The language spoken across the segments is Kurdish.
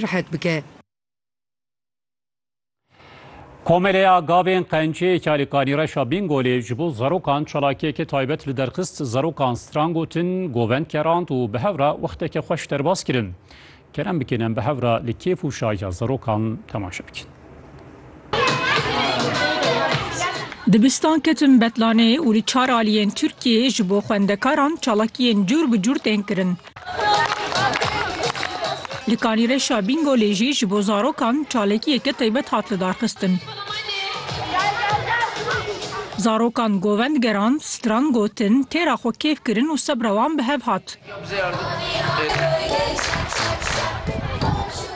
rihet bike. Komeleya Gavên Qenciyê ki li Kanîreşa Bîngolê ji bo zarokan çalakiyeke taybet li derxist, zarokan stran gotin, govend kerand û bi hev re wexteke xweş derbas kirin. Kerem bikin em bi hev re li kêf û şahiya zarokan temaşe bikin. Dibistan ketim Betlanê û li çar aliyên Tirkiyeyê ji bo xwendekaran çalakiyên cûr bi cûr tên kirin. Li Kanîreşa Bîngolê jî ji bo zarokan çalakiyeke taybet hat lidarxistin. Zarokan govend geran, stran gotin, têra xwe kêf kirin û sebra wan bi hev hat.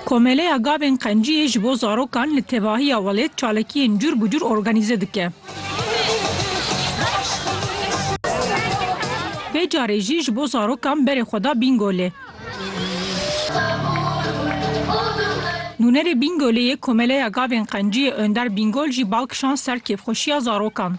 Komeleya Gavên Qenciyê ji bo zarokan li tevahiya welêt çalakiyên cur bi cur organîze dike. Vê carê jî ji bo zarokan berê xwe da Bîngolê. Nûnerê Bîngolê yê Komeleya Gavên Qenciyê Önder Bîngol jî bal kişand ser kêfxweşiya zarokan.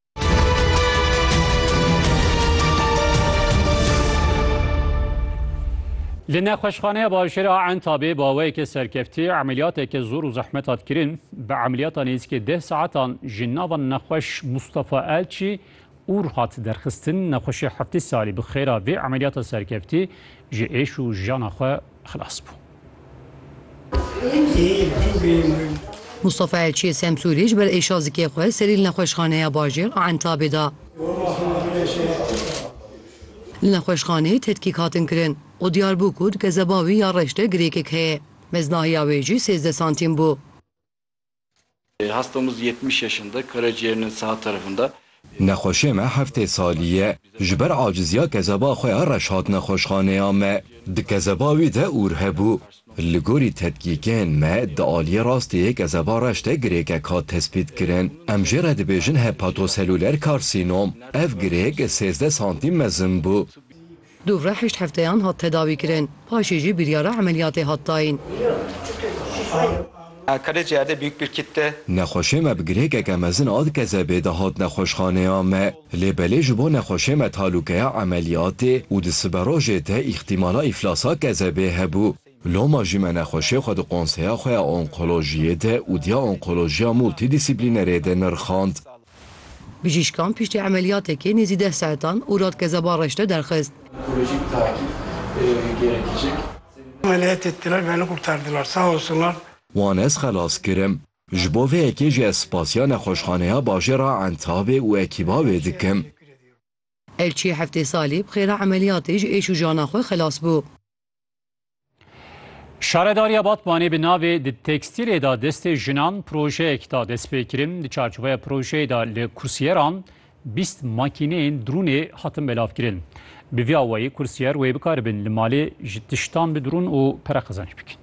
Li nexweşxaneya bajêr a Entabê bi awayeke serkeftî emeliyateke zor û zehmet hat kirin. Bi emeliyata nêzîkê deh saetan ji nava nexweş Mustafa Elçî Ûr hat derxistin. Nexweşê heftê salî bi xêra vê emeliyata serkeftî ji êş û jiyana xwe xilas bû. Mustafa Elçiyê Semsûrî ji ber êşa zikê xwe serî li nexweşxaneya bajêr a Entabê da. Li nexweşxaneyê tedkîk hatin kirin û diyar bû ku di kezeba wî ya reş de girêkek heye. Meznahiya wê jî sêzdeh santîm bû. Hastamız yetmiş yaşında, karaciğerinin sağ tarafında. Nexweşê me heftê salî ye. Ji ber acizîya kezeba xwe ya reş hat nexweşxaneya me. Di kezeba wî de ûr hebû. Li gorî tedkîkên me di aliyê rastê yê kezeba reş de girêkek hat tespîtkirin. Em jê re dibêjin hepatoseluler karsînom. Ev girêk sêzdeh santîm mezin bû. Dû re heşt hefteyan hat tedawîkirin, paşê jî biryara emeliyatê hat dayîn. Nexweşê me bi girêkeke mezin a dikezebê de hat nexweşxaneya me, lê belê ji bo nexweşê me talûkeya emeliyatê û di siberojê de îxtîmala îflasa kezebê hebû. Loma jî me nexweşê xwe di konseya xwe ya onkolojiyê de û diya onkolojiya multîdîsîplînerê de nirxand. Bijîşkan piştî emeliyatekê nêzî deh saetan û radkeza ba reşte derxist. Wan ez xelas kirim. Ji bo vê yekê jî ez spasiya Nexweşxaneya Bajêra Entebê û ekîba wê dikim. Elçiyê heftê salî bi xêra emeliyatê ji êş û jana xwe xelas bû. Şaredariya Batmanê bi navê di tekstîlê da destê jinan projeyek da destpêkirin. Di çarçoveya projeyê da li kursiyeran bîst makîneyên drûnê hatin belavkirin. Bi vî awayî kursiyer wê bikaribin li malê ji tiştan bi drûn û pere qezenç bikin.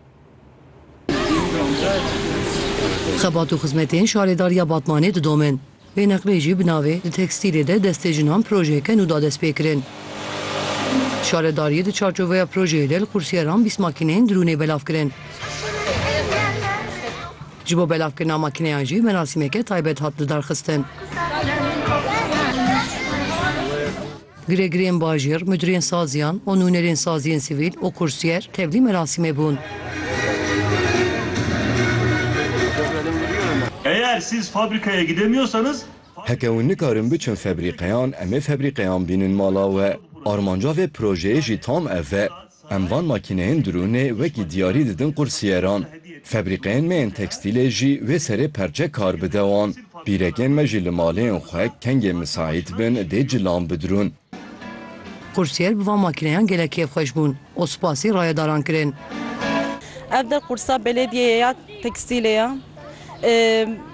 Xebat û xizmetên şaredariya Batmanê didomin. Vê neqlê jî bi navê Di tekstîlê de destê jinan projeyeke nû da destpêkirin. Şaredariyê di çarçoveya projeyê de li qursyeran bîst makîneyên drûnê belav kirin. Ji bo belavkirina makîneyan jî merasîmeke taybet hat lidarxistin. Giregirên bajêr, mudirên saziyan û nûnerên saziyên sivîl û kursyer tevlî merasîmê bûn. Eğer siz fabrikaya gidemiyorsanız Heke ew nikarin biçin febrîqeyan em ê febrîqeyan bînin mala we. Armanca vê projeyê jî tam ev e. Em van makîneyên drûnê wekî diyarî didin qursîyeran. Febrîqeyên me yên tekstîlê jî wê serê perçe kar bide wan. Pîrekên me jî li maleyên xwe kengê misaît bin dê cilan bidrûn. Qursîyer bi van makîneyan gelek kêfxweş bûn û spasî rayedaran kirin. Ev der qursa belêdiyeyê ya tekstîlê ye.